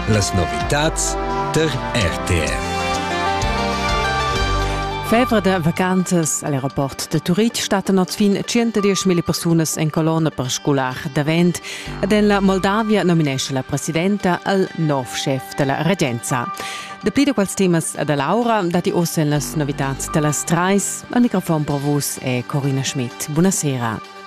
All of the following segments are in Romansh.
Las novitads tar RTR. Febra de vacanzas all'aeroport de Turitg stattan oz fin 110.000 persunas en colonna per scolar davent ed en la Moldavia nominesce la presidenta al nov chef della regenza. Dapli da quels temas da Laura dati oz en las novitats da las Treis. Al microfon pro vus è Corina Schmidt. Buonasera.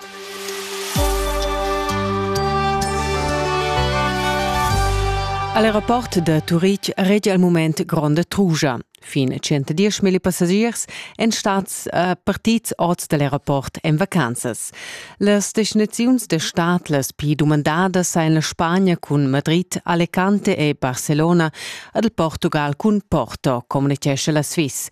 All'aeroport da Turitg regia il mument gronda trugia. Fin 110 mila passagiers èn stads uh, partids oz da l'aeroport en vacanzas. Las destinaziuns da stad las pli dumandadas sain la Spagna cun Madrid, Alicante e Barcelona ad il Portugal cun Porto, communichescha la Swiss.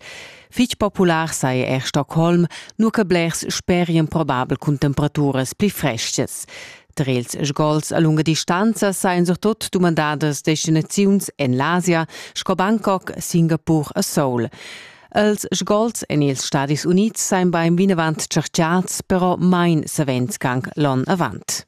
Fich popular saja er Stockholm, nur che blers sperien probabel cun temperaturas pli frestgas. Tar ils sgols a lunga distanza sajan surtut dumandadas destinaziuns en l'Asia sco Bangkok, Singapur e Seoul. Els sgols en ils Stadis Unids sajan bain vinavant tschertgads, però main savens gang l'on avant.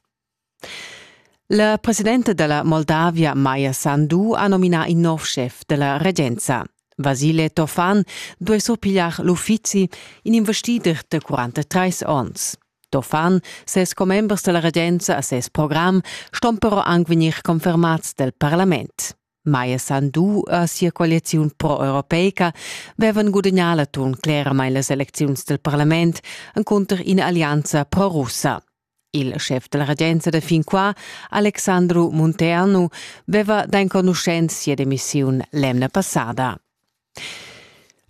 La presidenta dalla Moldavia Maja Sandu ha nominà in nov schef dalla regenza. Vasile Tofan duei surpigliar l'uffizi, in investider de 43 onns. Tofan, ses commembers dalla regenza a ses program ston però anc vegnir confermats del parlament. Maja Sandu e sia coaliziun pro-europeica vevan gudagnà l'atun cleramain las elecziuns del parlament encunter ina allianza pro-russa. Il schef della regenza da fin qua, Alexandru Munternu, veva d'enconuschenza demissiun l'emna passada.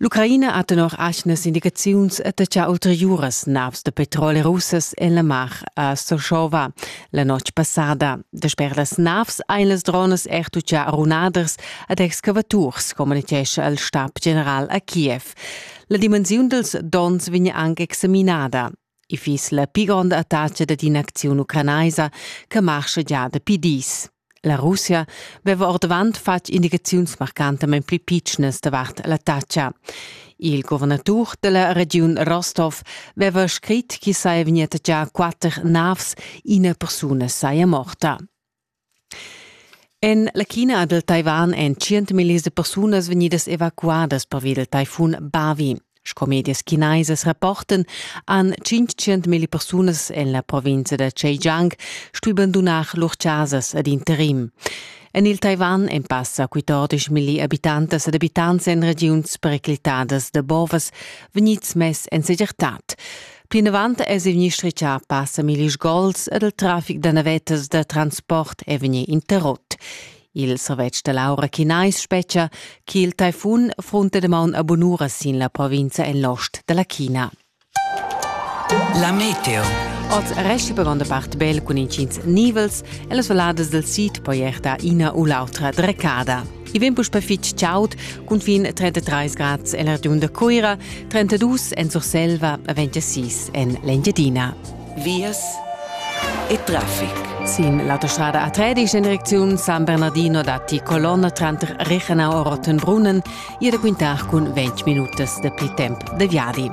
L'Ucraina ha tenor atgnas indicaziuns attacchà ulteriuras navs da petrol russas en la mar a Sochova la notg passada. Dasper las navs ein las dronas er tuccà runaders ad excavaturs, communitgescha il stab general a Kiev. La dimensiun dals donns vegn anche examinada. I fiss la pi gronda attacca dad in'acziun ucranaisa che marscha gia dapi dis. La Russia veva ordavant fatg indicaziuns marcantamain pli pitschnas davart l'attacca. Il guvernatur della regiun Rostov veva scrit che saja vegni attaccà quatter navs, ina persuna saja morta. En la China dal Taiwan èn tschientmillis da persunas vegnidas evacuadas pervi dal taifun Bavi. Sco medias chinaisas rapportan, han 500.000 persunas en la provinza da Zhejiang stuì bandunar lur chasas ad interim. En il Taiwan èn passa 14.000 abitantas ed abitants en regiuns periclitadas da bovas vegnids mess en segirtad. Plinavant es il minister cha passa millis gols ed il trafic da navettas da transport è vegni interrot. Il servetsch da l'aura chinais spetgia che il taifun frunta damaun a bunura sin la provinza en l'ost da la China. La meteo. Oz resti per gronda part bel cun intgins nivels e las valadas del sid poi erta ina u l'autra drecada. I vegn puspè fitg chaud, cunfin 33 grads en la regiun da Cuira, 32 en Surselva e 26 en l'Engiadina. Vias e traffic. Sin l'autostrada A3 ist in Direktion San Bernardino datti Colonna tranter Rechenau e Rottenbrunnen, jede quintach cun 20 minutas de pri temp de viadi.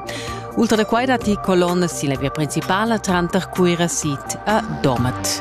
Ultra da quai datti Colonne sin la via principala tranter Cuira Sid e Domat.